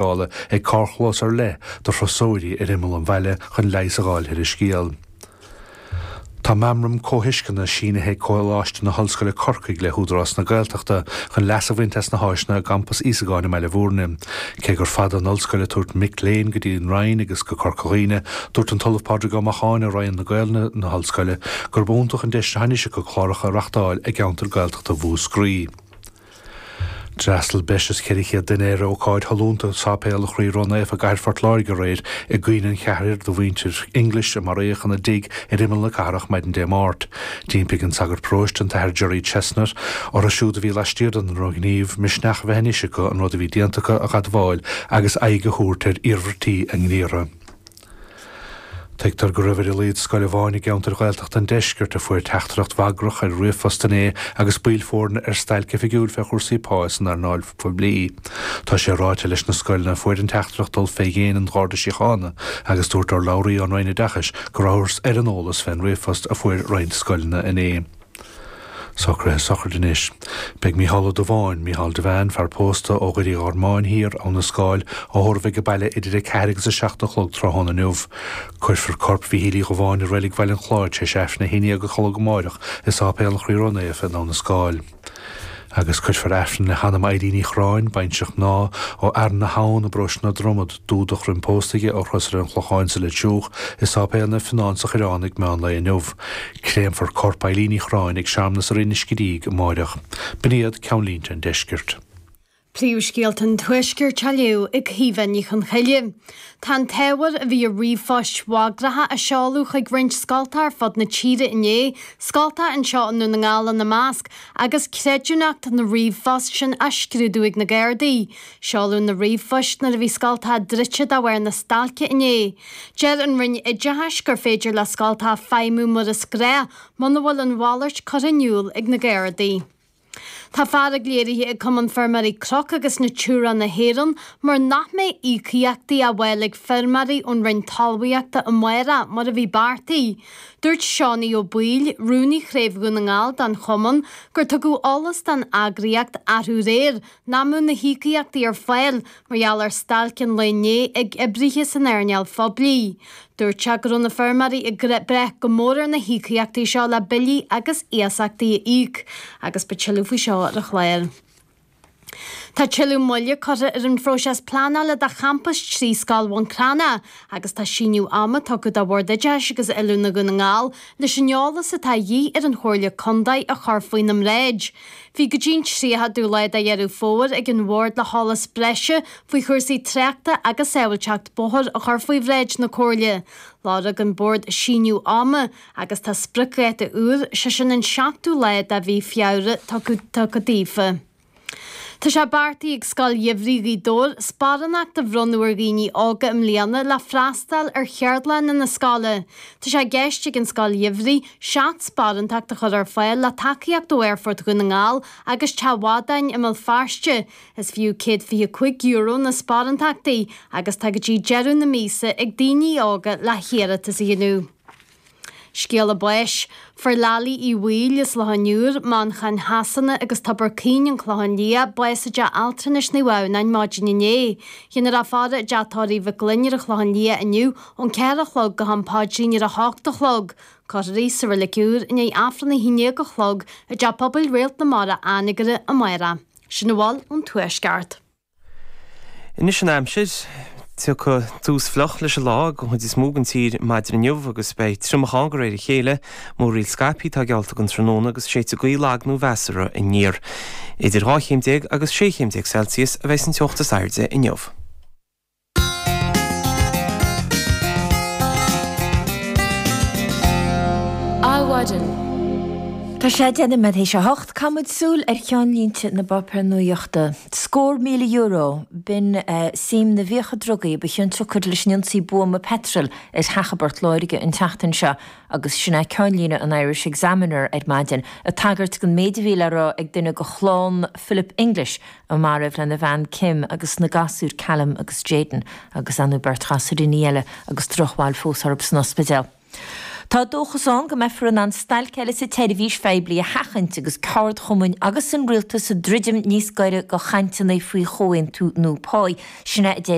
Dála gá carrchlós ar leith do thurasóirí ar imeall an bhaile chun leigheas a dh'fháil ar an scéal. Tá meamram comhthuisceana sínithe ag Coláiste na hOllscoile Corcaigh le hÚdarás na Gaeltachta chun leas a bhaint as na háiseanna i gCampas Íosagáin i mBaile Mhúirne. Cé gur fada an ollscoil ag tabhairt mic léinn go dtí an Rinn agus go Corca Dhuibhne, dúirt an tOllamh Pádraig Ó Macháin ó Roinn na Gaolainne san Ollscoil gurb iontach an deis atá anois acu cláracha a reachtáil i gceantar Gaeltachta Mhúscraí. D'fhreastal breis is 400 duine ar ócáid shollúnta i Sáipéal an Chroí Ró-Naofa i gcathair Phort Láirge aréir i gcuimhne an cheathrair de mhuintir English a maraíodh ina dtigh ar imeall na cathrach maidin Dé Máirt. D'impigh an sagart paróiste, an tAthair Gerry Chesnett, orthu siúd a bhí laistiar den ndrochghníomh misneach a bheith anois acu an rud a bhí déanta acu a admháil agus aghaidh a thabhairt ar iarmhairtí a ngníomhartha. Tuigtear go raibh ar a laghad scoil amháin i gceantar Ghaeltachta an Deiscirt a fuair teachtaireacht bhagrach ar ríomhphost inné agus baill foirne ar stailc oifigiúil fé chúrsaí pá san earnáil phoiblí. Tá sé ráite leis na scoileanna a fuair an teachtaireacht dul fé dhéin an Gharda Síochána agus dúirt urlabhraí ón Roinn Oideachais go rabhthas ar an eolas fén ríomhphost a fuair roinnt scoileanna inné. Socruithe sochraide anois. Beidh Mícheál Ó Dubháin, Mícheál Devane, fear pósta ó Dhoire Uí Ghormáin Thiar, Abha na Scáil á thórramh ag baile idir a ceathair agus a seacht a chlog tráthnóna inniu. Cuirfear corp Mhíchíl Uí Dhubháin i Reilig Bhaile an Chláraigh tar éis Aifreann a haon déag a chlog amáireach i Sáipéal an Chroí Ró-Naofa in Abha na Scáil. Agus cuirfear Aifreann le hanam Eilín Uí Chriáin, baintreach mná ó Fhearann na hAbhann i bparóiste na Dromad, ba de Dhrom Tine ó Chrosaire an Chlocháin sa Leitriúch, i Sáipéal Naomh Fionán sa Choireán ag meán lae inniu. Créamfar corp Eileen Uí Chriáin ag searmanas i Rinn an Scidígh amáireach. B'in iad ceannlínte an Deiscirt. Príomhscéalta an Tuaiscirt á léamh ag Caoimhe Ní Chonghaile. Tá an t-ábhar a bhí i ríomhphoist bhagracha a seoladh chuig roinnt scoltacha ar fud na tíre inné, scoltacha anseo i nDún na nGall ina measc, agus creidiúnacht na ríomhphost sin á scrúdú ag na Gardaí. Seoladh na ríomhphoist nuair a bhí scoltacha druidte de bharr na stailce inné. Deir an Roinn Oideachais gur féidir le scoltacha feidhmiú mar is gnách muna bhfuil a mhalairt curtha in iúl ag na Gardaí. Tá fearg léirithe ag Cumann Feirmeoirí Cnoc agus Natura na hÉireann mar nach mbeidh íocaíochtaí á bhfáil ag feirmeoirí ón Roinn Talmhaíochta amárach mar a bhí beartaithe. Dúirt Seánie Ó Baoill, Rúnaí Chraobh Dhún na nGall don Chumann gur tugadh eolas don eagraíocht arú aréir Nach mbeadh na híocaíochtaí ar fáil mar gheall ar stailc an lae inné ag oibrithe san earnáil phoiblí. Dúirt sé go raibh na feirmeoirí ag brath go mór ar na híocaíochtaí seo le billí agus iasachtaí a íoc agus beidh tuilleadh faoi seo ar an chlár. Tá tuilleadh moille curtha ar an phróiseas pleanála do champas trí Scoil Bhun Cranncha agus tá síneadh ama tugtha do Bhord Oideachais agus Oiliúna Dhún na nGall leis an eolas atá de dhíth ar an Chomhairle Contae a chur faoina mbráid. Bhí go dtí an 30ú lá de Dheireadh Fómhair ag an Bhord le heolas breise faoi chúrsaí tráchta agus sábháilteacht bóthair a chur faoi bhráid na Comhairle. Lorg an Bord síneadh ama agus tá spriocdháta úr, sé sin an 7ú lá de mhí Feabhra, tugtha daofa. Tá sé beartaithe ag Scoil Gheimhridh Ghaoth Dobhair sparánacht a bhronnadh ar dhaoine óga i mbliana le freastáil ar cheardlanna na scoile. Tá sé i gceist ag an Scoil Gheimhridh seacht sparántacht a chur ar fáil le tacaíocht ó Aerfort Dhún na nGall agus Teach Mhadáin i mBéal Feirste. Is fiú €125 na sparántachtaí agus tá go dtí deireadh na míosa ag daoine óga le hiarratas a dhéanamh. Scéala báis. Fuair Lily Uí Bhaoill as Loch an Iúir, Manchain Shasana agus Tobar Caoin, An Clochán Liath, bás i dTeach Altranais Naomh Adhamhnáin maidin inné. Dhéanfar a faire i dTeach Tórraimh Mhic Gloinn ar an Chlochán Liath inniu ón 4 a chlog go ham paidrín ar a hocht a chlog. Cuirfear í sa reilig úr i ndiaidh Aifreann a haon dhéag a chlog i dTeach Pobail Réalt na Mara, Anagaire, amárach. Sin a bhfuil ón Tuaisceart. Anois an aimsir. Tiocfaidh tús fliuch leis an lá ag an chuid is mó den tír maidin inniu agus beidh triomach ann de réir a chéile. Múraíl scaipthe atá geallta don tráthnóna agus séidfidh gaoth lag nó mheasartha aniar. Idir dhá chéim déag agus sé chéim déag Celsius a bheas an teocht is airde inniu. Adhmhaidin. Tá sé deich noiméad théis a hocht. Caithfimid súil ar cheannlínte na bpáipéar nuaíochta. Scór míle euro, b'in suim na bhfiacha drugaí a ba chionsiocair leis an ionsaí buama peitril ar theach i bPort Láirge an tseachtain seo agus sin é ceannlíne an Irish Examiner ar maidin, ag tagairt don méid a bhí le rá ag duine de chlann Philip English, a maraíodh lena bhean Kim agus na gasúir Callum agus Jayden agus an bheirt ghasúiríní eile agus drochbhail fós orthu san ospidéal. Tá dóchas ann go mbeifear in ann stailc eile sa tseirbhís phoiblí a sheachaint agus ceardchumainn agus an rialtas ag druidim níos gaire do chainteanna faoi chomhaontú nua pá.